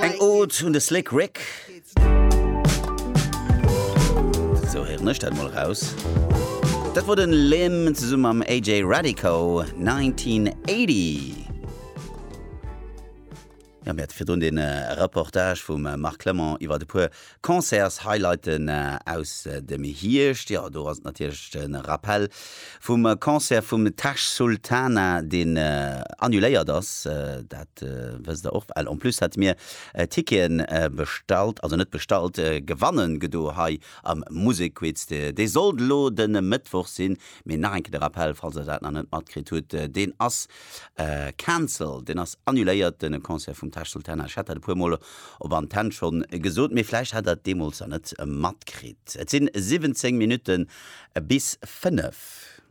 Eng Ode un de Slick Rick. Sou héieren ech dat mol raus. Dat wor den Lim zesummen mam AJ Radico 1980. Ja, mir hat virdrun den Reportage vum Marc Clement iwwert e puer Concerts-Highlighten aus dem Hierscht, jo, do ass et natierlech de Rappell vum Concert vum Tash Sultana, deen annuléiert ass, dat wësst der och well. En plus hate mir Ticketen bestallt, also net bestallt, gewanne gedo hei am Musekquiz. Dee sollt elo de Mëttwoch sinn, mee nach eng Kéier de Rappell, falls der dat nach net matkritt hutt, deen ass cancelled, deen ass annuléiert, de Concert vum Tash Sultana. Ech hat dat e puer mol op Antenn schonn gesot, mee vläicht hat der et deemools nach net matkritt, et sinn 17 Minutte bis fënnef.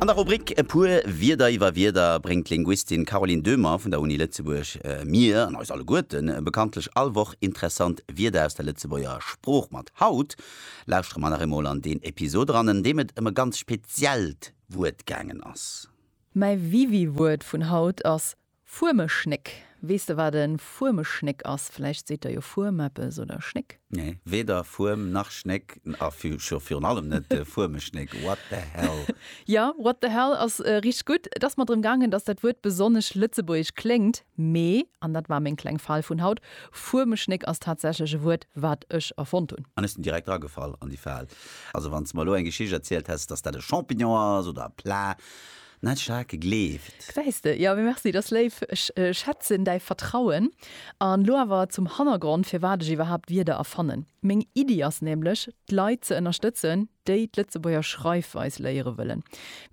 An der Rubrik E puer Wierder iwwer Wierder bréngt d'Linguistin Caroline Döhmer vun der Uni Lëtzebuerg mir an eis alleguerten bekanntlech all Woch interessant Wierder aus der Lëtzebuerger Sprooch mat. Haut lauschtere mer nach eemol an deen Episod eran, an deem et ëm e ganz speziellt Wuert gaangen ass. Mäi Wiwi-Wuert vun haut ass Fuermeschnéck, Weess de wat e Fuermeschnéck ass? Vläicht seet der jo Fuerm eppes oder Schnéck? Nee, weder Fuerm nach Schnéck a scho virun allem net de Fuermeschnéck. What the hell? Jo, what the hell ass richteg gutt. Et ass mer drëm gaangen, dass dat Wuert besonnesch lëtzebuergesch kléngt. Mee, an dat war meng kleng Fal vun haut, Fuermeschnéck ass tatsächlech e Wuert, wat ech erfonnt hunn. An ech sinn direkt dragefall an déi Fal. Also wann s de mer elo eng Geschicht erzielt häss, dass dat e Champignon ass oder e Plat, Net staark gleeft. Gesäis de, jo, mee merci, dass léif. Ech schätzen däi Vertrauen. An lo awer zum Hannergrond, firwat ech iwwerhaapt Wierder erfannen. Meng Iddi ass nämlech, d'Leit ze ënnerstëtzen, déi d'Lëtzebuerger Schreifweis léiere wëllen.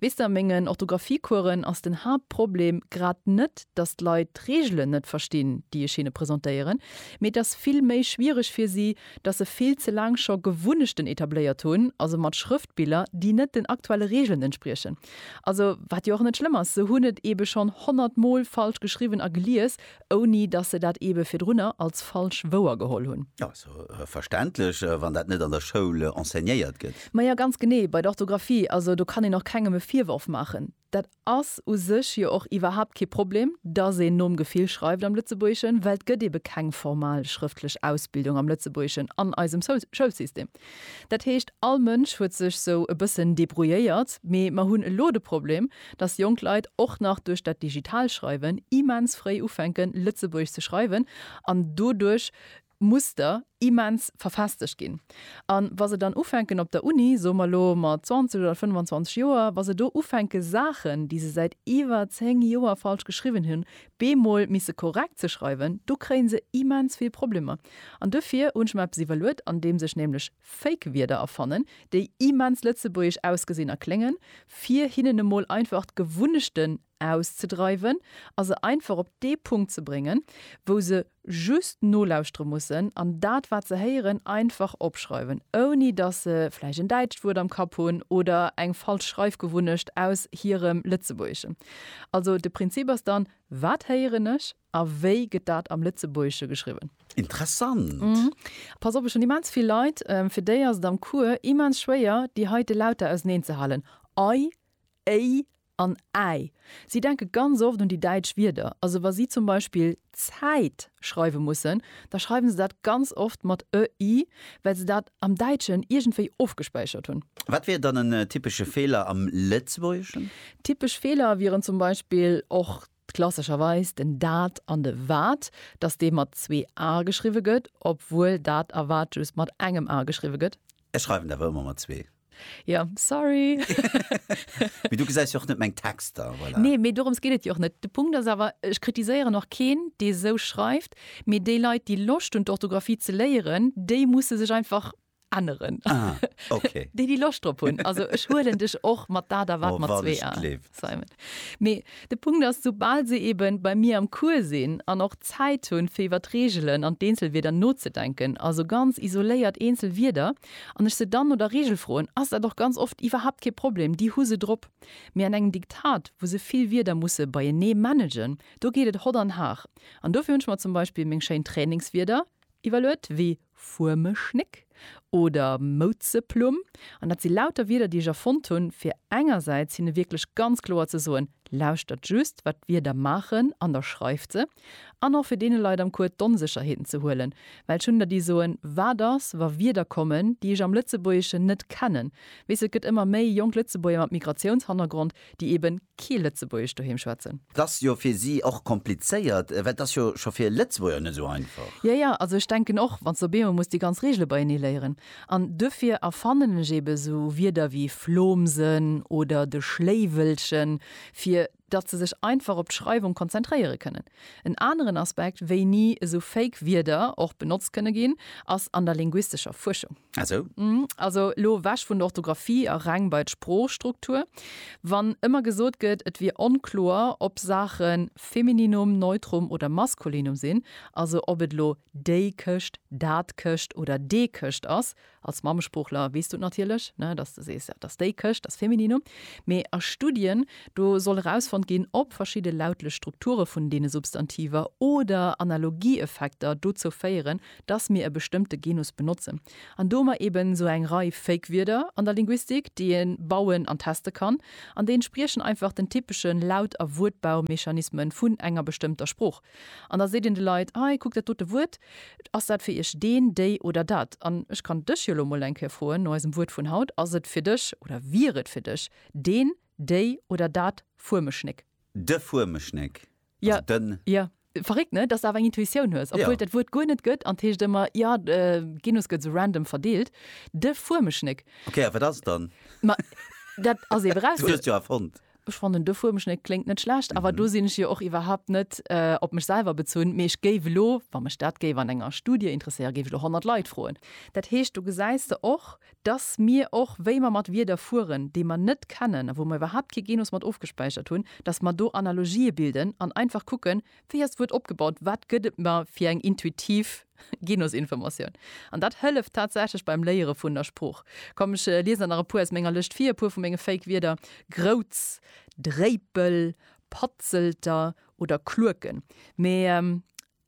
Weess de, a mengen Orthographie-Coursen ass den Haaptproblem grad net, dass d'Leit d'Reegelen net verstinn, déi ech hinne presentéieren, mee et ass vill méi schwiereg fir si, dass se vill ze laang scho Gewunnechten etabléiert hunn, also mat Schrëftbiller, déi net den aktuelle Reegelen entspriechen. Also, wat jo och net schlëmm ass, se hunn et eebe schonn honnert Mol falsch geschriwwen a gelies, ouni datt se dat eebe virdrunner als falsch wouer geholl hunn. Jo, ass jo verständlech, wann dat net an der Schoul enseignéiert gëtt. Maja, ganz genee, bei der Orthografie, also do kann een och kengem e Virworf maachen. Dat ass u sech jo och iwwerhaapt kee Problem, datt een nom Gefill schreift am Lëtzebuergeschen, well et gëtt eebe keng formal schrëftlech Ausbildung am Lëtzebuergeschen an eisem Schoulsystem. Dat heescht, all Mënsch huet sech sou e bëssen debrouilléiert, mee mer hunn elo de Problem, dass jonk Leit och nach duerch dat digital Schreiwen immens fréi ufänke Lëtzebuergesch ze schreiwen an doduerch Muster immens verfestegt ginn. A wa se dann ufänken op der Uni, soe mer elo mat 20 oder 25 Joer, wa se do ufänke Saachen, déi se säit iwwer 10 Joer falsch geschriwwen hunn, beemol misse korrekt ze schreiwen, do kréien se immens vill Problemer. An dofir hunn ech mer eppes iwwerluet, andeems ech nämlech Fake-Wierder erfannen, déi immens lëtzebuergesch ausgesinn a kléngen, fir hinnen emol einfach d'Gewunnechten auszedreiwen a se einfach op dee Punkt ze bréngen, wou se just nolauschtere mussen an dat wat se héieren einfach opschreiwen, ouni datt se vläicht en däitscht Wuert am Kapp hunn oder eng falsch Schreifgewunnecht aus hirem Lëtzebuergeschen. Also de Prinzip ass dann, Wat héieren ech a wéi gëtt dat am Lëtzebuergesche geschriwwen? Interessant! Pass op, ech hunn immens vill Leit, fir déi ass et am Cours immens schwéier, déi heite Lauter auseneenzehalen, ei, éi, An Äi. Si denke ganz oft un déi däitsch Wierder. Also wa si zum Beispill Zäit schreiwe mussen, da schreiwe se dat ganz oft mat ë-i, well se dat am Däitschen iergendwéi ofgespäichert hunn. Wat wier dann en typesche Feeler am Lëtzebuergeschen? Typesch Feeler wieren zum Beispill och Klassescherweis den dat an de wat, dass dee mat zwee a geschriwwe gëtt, obwuel dat a wat just mat engem a geschriwwe gëtt. Ech schreiwen et awer ëmmer mat zwee. Jo, sorry. Mee du gesäis jo och net meng Texter, voilà. Nee, mee dorëms geet et jo och net. De Punkt ass awer, ech kritiséieren och keen, dee esou schreift, mee déi Leit, déi Loscht hunn, d'Orthografie ze léieren, déi musse sech einfach änneren. Ah, okay. déi déi Loscht drop hunn. Also ech huelen dech och mat dat a wat oh, mat zwee a Simon. Mee de Punkt ass, soubal se eben bei mir am Cours sinn an och Zäit hunn, fir iwwer d'Reegelen an d'Eenzelwierder nozedenken, also ganz isoléiert eenzel Wierder, an ech se dann no der Reegel froen, ass dat och ganz oft iwwerhaapt kee Problem, déi hu se drop. Mee an engem Diktat, wou se vill Wierder musse beienee managen, do geet et hott an har. An dofir hunn ech mer zum Beispill meng schéin Trainingswierder, Iwwerluet wéi Fuermeschnéck oder Mouzeplumm. An dat si lauter Wierder, déi ech erfonnt hunn, fir engersäits hinne wierklech ganz kloer ze soen, Lauschtert just, wat d'Wierder maachen an da schreift se. An och fir deene Leit am Cours d'Onsécherheeten ze huelen. Well ech hunn der, déi soen, Wat ass, wa Wierder kommen, déi ech am Lëtzebuergeschen net kennen? Weess, et gëtt ëmmer méi jonk Lëtzebuerger mat Migratiounshannergrond, déi eben kee Lëtzebuergesch doheem schwätzen. Et ass jo fir si och komplizéiert, well et ass jo scho fir Lëtzebuerger net esou einfach. Jo, jo, also ech denken och, wann s de op eemol muss déi ganz Reegele beienee léieren. An duerfir erfannen ech eben esou Wierder wéi Flomsen oder de Schléiwelchen, fir datt se sech einfach op d'Schreiwung konzentréiere kënnen. En aneren Aspekt, wéini esou fake Wierder och benotzt kënne ginn, ass an der linguistescher Fuerschung. Ah sou. Also elo ewech vun der Orthografie a reng bei d'Sproochstruktur. Wann ëmmer gesot gëtt, et wier onkloer, ob Saache Femininum, Neutrum oder Maskulinum sinn, also ob et elo déi Këscht, dat Këscht oder dee Këscht ass, Als Mammesproochler weess du et natierlech, ne, dass de sees, dass déi Këscht, dass Femininum. Mee a Studien, do soll erausfonnt ginn, ob verschidde lautlech Strukture vun deene Substantiver oder Analogieeffekter dozou féieren, dass mir e bestëmmte Genus benotzen. An do hu mer eeben esou eng Rei Fake-Wierder an der Linguistik, déi ee bauen an teste kann. An déi entspriechen einfach den typesche Laut a Wuertbaumechanisme vun enger bestëmmter Sprooch. An da seet een de Leit, Hei, kuckt dat dote Wuert, ass dat fir iech deen, déi oder dat? An ech kann dech jo elo emol eng Kéier froen, no eisem Wuert vun haut, Ass et fir dech oder wier et fir dech deen, déi oder dat Fuemeschnéck? De Fuemeschnéck, also den. Jo, verréckt, ne? Dass s de awer eng Intuitioun hues, obwuel et dat Wuert guer net gëtt an et heescht ëmmer, jo, de Genus gëtt esou random verdeelt, de Fuemeschnéck. Okay, a wat ass et dann? Ma dat ass ewer eraus. Du hues et jo erfonnt. Ech fannen de Fuermschnéck kléngt net schlecht, awer do sinn ech jo och iwwerhaupt net op mech selwer bezunn, mee ech géif elo, wa mech dat géif an enger Studie interesséieren, géif ech elo 100 Leit froen. Dat heescht, do gesäis de och, dass mir och, wéi mer mat Wierder fueren, déi mer net kennen a wou mer iwwerhaupt kee Genus mat ofgespäichert hunn, dass mer do Analogië bilden an einfach kucken, Wéi ass d'Wuert opgebaut? Wat gëtt et mer fir eng intuitiv Genusinformatioun? An dat hëlleft tatsächlech beim Léiere vun der Sprooch. Komm, ech liesen der nach e puer aus menger Lëscht vir, e puer vu menge Fake-Wierder, Groutz, Dréipel, Patzelter oder Klueken. Mee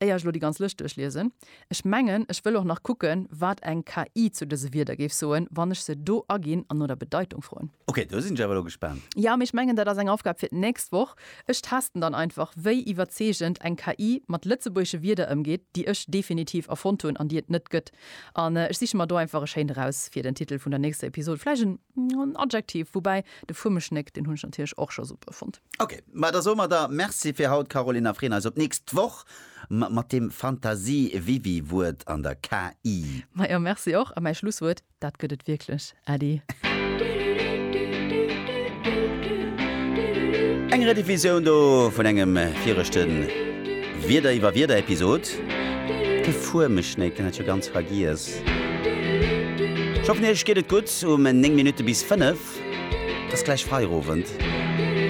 éier ech elo déi ganz Lëscht duerchliesen, ech mengen, ech wëll och nach kucken, wat eng KI zu dëse Wierder géif soen, wann ech se do aginn an no der Bedeitung froen. Ok, do sinn ech awer elo gespaant. Jo, mee ech mengen dat ass eng Aufgab fir d'nächst Woch. Ech testen dann einfach wéi iwwerzeegend eng KI mat lëtzebuergesche Wierder ëmgeet, déi ech definitiv erfonnt hunn an déi et net gëtt. An ech siche mer do einfach e schéint eraus fir den Titel vun der nächster Episod, vläicht en Adjektiv, woubäi de Fuemeschnéck, deen hunn ech natierlech och scho super fonnt. Ok, ma da soe mer der Merci fir haut Caroline a freeën eis op d'nächst Woch mat deem Fantasie-Wiwi-Wuert an der KI. Majo, Merci och a mäi Schlusswuert. Dat gëtt et wierklech, Äddi! Eng Rediffusioun do vun engem viregte Wieder iwwer Wieder Episod. De Fuermeschnéi, deen hat jo ganz vergiess. Ech hoffen iech geet et gutt um 9 Minutte bis 5. Et ass gläich Feierowend.